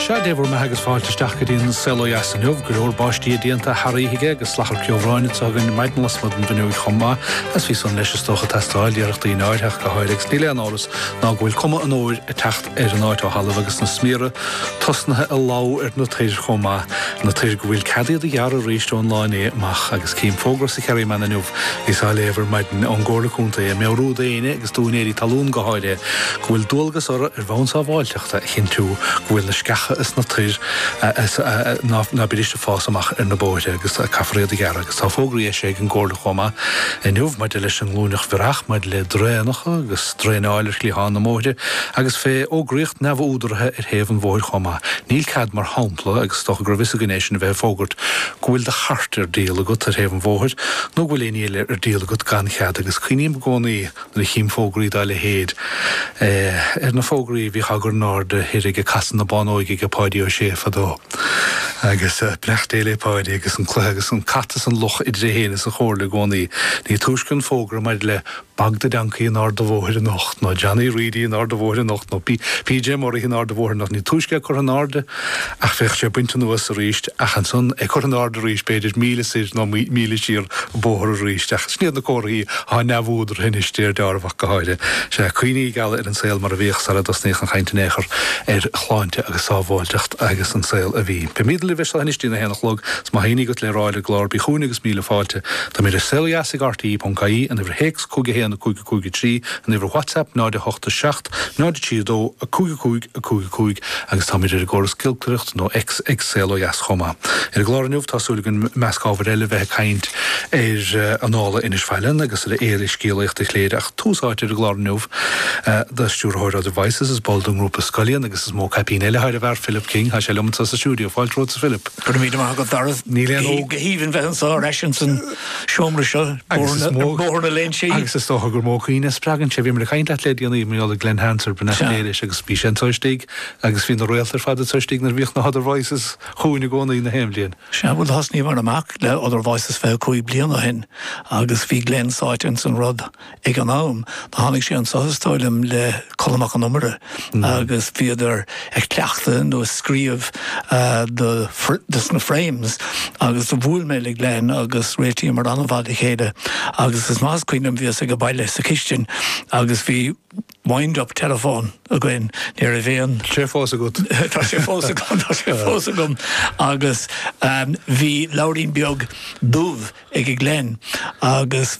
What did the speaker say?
Sea, Dé bhur mbeatha agus fáilte isteach go dtí an Saol ó Dheas inniu. Go leor báistí déanta thar oíche aige agus salachar ceobhráin atá againn ar maidin lasmuigh den bhfuinneoig chomh maith agus bhí san leis is dócha ag teastáil de réir daoine áirtheach go háirithe agus níl aon amhras ná go bhfuil cuma an fhómhair ag teacht ar an áit ó shin agus na smiara tosnaithe ag dubhadh ar na toir chomh maith na toir go bhfuil cead iad a ghearradh arís ón lá inné amach agus cím fógra sa Kerryman inniu bhíos á léamh ar maidin ón gComhairle Contae ag meabhrú d'éinne agus d'úinéirí talún go háirithe go bhfuil dualgas orthu ar bhonn sábháilteachta a chinntiú go bhfuil na sceacha is na toir ná beidís ag fás amach ar na bóithre agus caithfear iad a ghearradh agus tá fógraí eisithe ag an gComhairle chomh maith inniu maidir leis an nglúineach bhiorach, maidir le draenacha agus draenáil ar chliatháin na mbóithre agus fé fhógraíocht neamhúdaraithe ar thaobh an bhóthair chomh maith. Níl cead mar shampla, agus is dócha go raibh a fhios againn é sin, a bheith ag fógairt go bhfuil do chairt ar díol agat ar thaobh an bhóthair nó go bhfuil éinní eile ar díol agat gan chead agus cuimhním i gcónaí nuair a chím fógraí dá leithéid. Ar na fógraí a bhíodh á gcur in airde thoir ag Casadh na Bánóige age Páidí Ó Sé fadó. Agus beannacht Dé le Páidí agus an cluiche agus an cat is an luch idir é féin is an Chomhairle i gcónaí. Ní túisce an fógra maidir le Bog the Donkey in Ard a' Bhóthair anocht, nó Johnny Reidy in Ard a' Bhóthair anocht, nó PJ Murrihy in Ard a' Bhóthair anocht, ní túisce é curtha in airde, ná bheadh sé bainte anuas arís, ach ansan é curtha in airde arís, b'fhéidir, míle soir nó míle siar an bóthar arís. Ach sin iad na comharthaí atá neamhúdaraithe anois de réir dealraimh ach go háirithe. Sea, cuimhní geala ar an saol mar a bhíodh sara dtosnaíodh an chaint in aon chor ar shláinte agus sábháilteacht agus an saol a bhí. Beimidne libh as seo anois dtí'n a haon a chlog, 's má tá éinní agat le rá leis an gclár, bí chugainn agus míle fáilte. Táimid ar Saol Ó Dheas ag RTÉ.ie, an uimhir théacs 511553, an uimhir WhatsApp 0, 8, 7, 0 3 2 5 5 5 5 agus táimid ar an gcóras giolcaireachta nó X ag Saol Ó Dheas chomh maith. Ar an gclár inniu, tá súil againn, i measc ábhair eile, bheith ag caint ar Annála Inis Faithleann agus ar Fhéile Scéalaíochta Chléire ach tús áite ar an gclár inniu do Stiúrthóir Other Voices, is ball den ngrúpa Scullion agus is mó caipín eile thairis sin air, Philip King. Tá sé liom anseo sa stiúideo. Fáilte romhat, a Philip. Go raibh míle maith agat, Dara. Tá sé go haoibhinn bheith anseo ar ais ins an. seomra seo Bóthar na Léinsí. Agus is dócha gur mó cuimhne a spreagann sé. Bhíomar ag caint leat le déanaí, mar gheall ar Glen Hansard, beannacht Dé leis agus bhí sé anseo istigh agus bhí na réalta ar fad anseo istigh nuair a bhíodh Other Voices chugainn i gcónaí na haon bhliain. Sea, bhuel thosnaíomar amach le Other Voices 25 bliain ó shin agus bhí Glen sáite ins an rud. Ag an am, do tháinig sé anso is dóigh liom le Colm Mac an Iomaire agus bhíodar ag cleachtadh nó ag scríobh dos na Frames agus do bhuail mé le Glen agus réitíomar an-mhaith le chéile agus is maith is cuimhin liom bhíos age baile sa chistin agus bhí wind up telephone againn, ní raibh aon. Tá sé fós agat. Tá sé fós agam, tá sé fós agam agus bhí leabhairín beag dubh ag Glen agus.